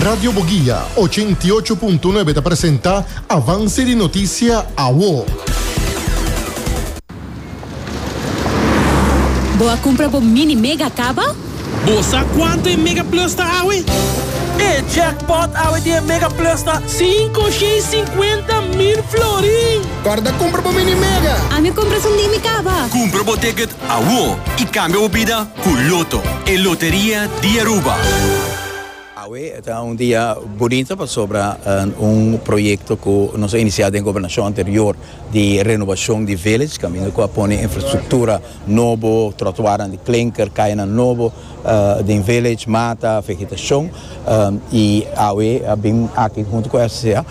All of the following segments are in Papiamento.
Radio Boguia ochenta i ocho punto nuebe ta presenta avanse di notisia awo. Bo a cumpra bo mini mega caba? Bo sa cuanto e mega plus ta awe? E jackpot awe di e mega plus ta cinco shei cincuenta mil florin! Corda cumpra bo mini mega! Ami a cumpra esun di mi caba! Cumpra bo ticket awo y cambia bo bida! Cu Lotto, e loteria di Aruba. Awe ta un dia bunito pasobra un proyecto cu nos a inicia den gobernacion anterior di renovacion di village caminda cu a pone infrastructura nobo, trotuarnan di klinker, cayanan nobo den village, mata, vegetacion y awe a bin aki hunto cu SCCA.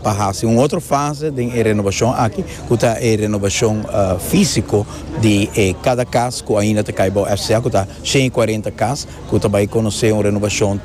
pa hasi un otro fase den e renobashon aki ku ta e renobashon físiko di e kada kas ku ainda ta kai bou FCA ku ta shen i kuarenta kas ku ta bai konosé un renobashon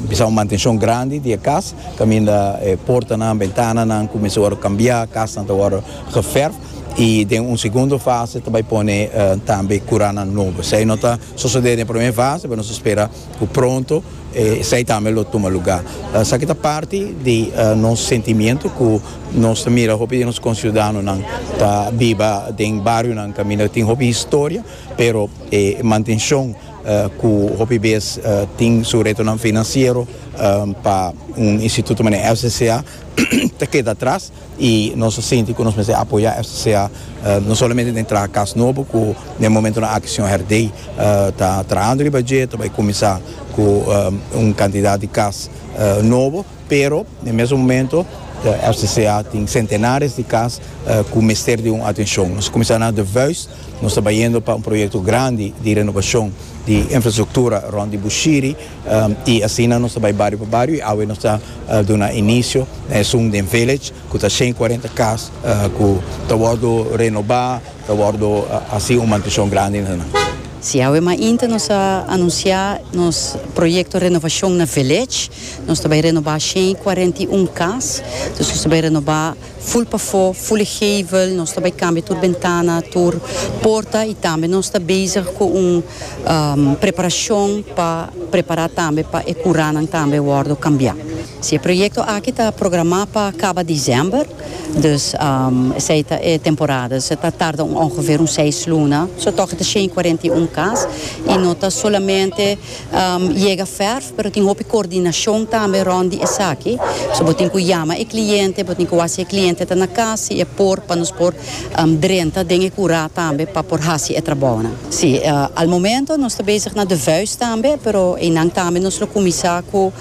bisa un mantenshon grandi di e kas kaminda e portanan, bentananan ku mester wòrdu kambiá, kasnan ta wòrdu gefèrf i den un segundo fase ta bai pone tambe kuranan nobo. Esei no ta sosodé den e promé fase pero nos ta spera. Cu pronto esai tambe lo tuma luga. Esaki ta parti di nos sentimiento cu nos ta mira hopi di nos conciudadanonan ta biba den barionan caminda tin hopi historia, pero e mantencion cu hopi bes tin su retonan financiero pa un instituto mane SCCA ta keda atras. y nos a sinti cu nos mester apoya FCCA no solamente den traha cas nobo cu den momentonan aki señor Herdey ta trahando riba dje ta bay cuminsa cu un cantidad di cas nobo pero den mesun momento FCCA tin centenares di cas cu mester di un atencion nos a cuminsa na de vuis nos ta bayendo pa un proyecto grandi di renobacion di infrastructura rond di Bushiri I asina nos ta bai bario pa bario i awe nos ta duna inicio na e Zoom den Village cu ta shen y cuarenta cas cu ta wordo renoba, ta wordo haci un mantencion grandi na nan. Si, awe mainta nos a anuncia nos proyecto renovacion na Village. Nos ta bai renoba shen y cuarenta y un cas, nos ta bai renoba. Ful pafó, ful e gevel, nos ta bai kambia tur bentana, tur porta i tambe nos ta bezig ku un preparashon pa prepará tambe pa e kuranan tambe wòrdu kambiá. Si e proyekto aki ta programá pa kaba desèmber, dus esei ta e temporada, dus e ta tarda un ongever un seis luna, so tòg e ta shen i kuarenta i un kas i no ta solamente. Yega ferf, pero tin hopi coordinacion tambe rond di esaki. So bo tin cu yama e cliente, bo tin cu haci e cliente ta na cas si e por, pa nos por drenta den e cura tambe pa por haci e trabounan. Si, al momento nos ta bezig na de vuist tambe, pero eynan tambe nos lo cuminsa cu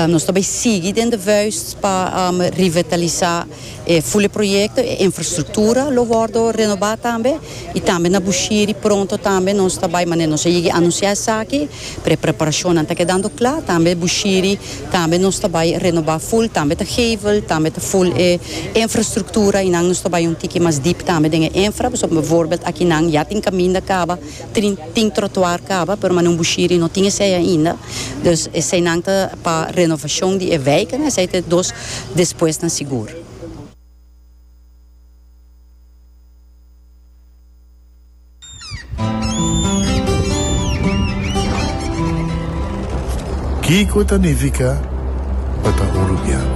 nos ta bay sigui den de vuist pa revitalisá. E fule proyekto, e infrastruktura lo wòrdu renobá tambe, i tambe na Bushiri pronto tambe nos ta bai manera nos a yegi anunsiá esaki, pero e preparashonnan ta kedando kla, tambe Bushiri tambe nos ta bai renobá ful, tambe ta geivel, tambe ta ful e infrastruktura i nan nos ta bai un tiki mas dip tambe den e infra, pasobra bivoorbeld aki nan ya tin kaminda kaba. Tin tin trotuar kaba pero manan bushiri no tin esei ainda dus eseinan ta pa renovashon di e wijk en esei ta e dos despuesnan sigur. Kiko ta nifica pa ta uruguiano?